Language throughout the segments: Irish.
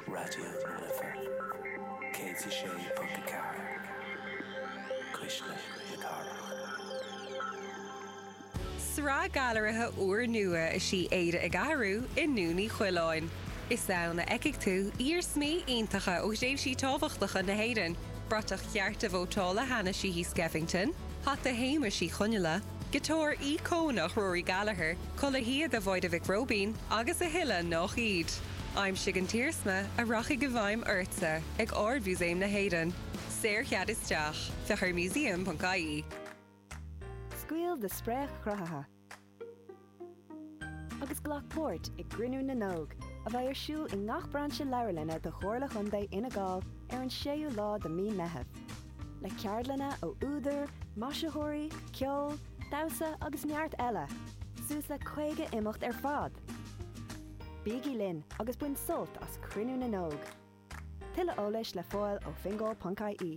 Raidió na Life 106.4 Cuisle na Cathrach. Sraith gailearaithe úrnua is í Éire ag Athrú i nDún Uí Choileáin. Is ann a fheicfidh tú iarsmaí iontacha ó thréimhsí tábhachtacha na hÉireann, bratach chearta vótála Hannah Sheehy Skeffington, hata Shéamuis Uí Chonghaile, Giotár íocónach Rory Gallagher, culaith shíoda Mháire Mhic Róibín agus a thuilleadh nách iad. Aimsigh an t-iarsma a rachaidh i bhfeidhm ortsa ag Ard-Mhúsaem na hÉireann. Saorchead isteach. Féach ar museum.ie. Scaoil do spréach chruthaitheach. agus glac páirt i gCruinniú na nÓg, a bheidh ar siúl i ngach brainse leabharlainne de Chomhairle Chontae Fhine Gall ar an 6ú lá de Mí Meitheamh, le ceardlanna ó údair, maisitheoirí, ceol, damhsa agus neart eile, suas le 50 imeacht ar fad! Bígí linn agus bain sult as Cruinniú na nÓg! Tuilleadh eolais le fáil ó fingal.ie.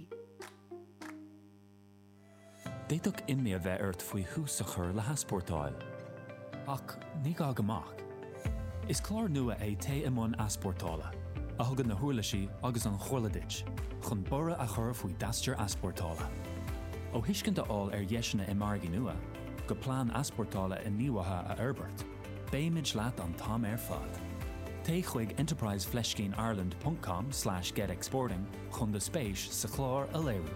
D'fhéadfadh imní a bheith ort faoi thús a chur le heaspórtáil. Ach ní gá go mbeadh. Is clár nua é Téigh i mbun Easpórtála, a thugann na huirlisí agus an chomhairle duit chun borradh a chur faoi d'aistear easpórtála. Ó thuiscint a fháil ar dheiseanna i margaí nua, go plean easpórtála inníomhaithe a fhorbairt, beimid leat an t-am ar fad. Téigh chuig enterprise fleiscín ireland ponc com slash get exporting chun do spéis sa chlár a léiriú.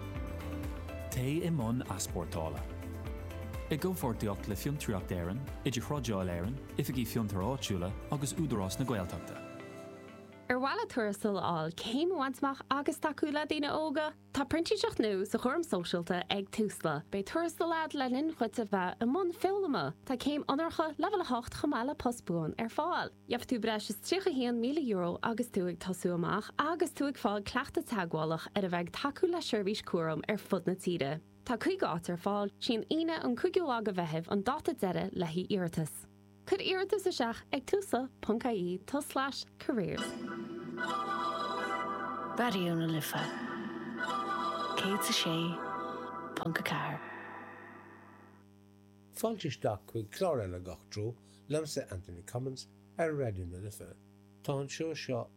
Téigh i mbun easpórtála. I gcomhpháirtíocht le Fiontraíocht Éireann, Idirthrádáil Éireann, Oifigí Fiontair Áitiúla agus Údarás na Gaeltachta. Ar mhaith leat tuarastal a fháil, céim a bhaint amach agus tacú le daoine óga? Tá printíseacht nua sa chúram sóisialta ag Tusla. Beidh tuarastal agat le linn dhuit a bheith i mbun foghlama. Tá céim onóracha Leibhéal 8 chomh maith le post buan ar fáil. Gheobhaidh tú breis is €31,000 agus tú ag tosú amach agus tú ag fáil cleachtadh teagmhálach ar a bheith ag tacú le seirbhís cúraim ar fud na tíre. Tá 50 áit ar fáil, sí an Aoine an 5ú lá de Mheitheamh an dáta deiridh le h-iarratas. Cuir iarratas isteach ag tusla ponc ie tulslais careers. Raidió na Life 106.4. Fáilte isteach chuig clár eile i nGach Treo, liomsa Anthony Cummins, ar Raidió na Life. Tá an seó seo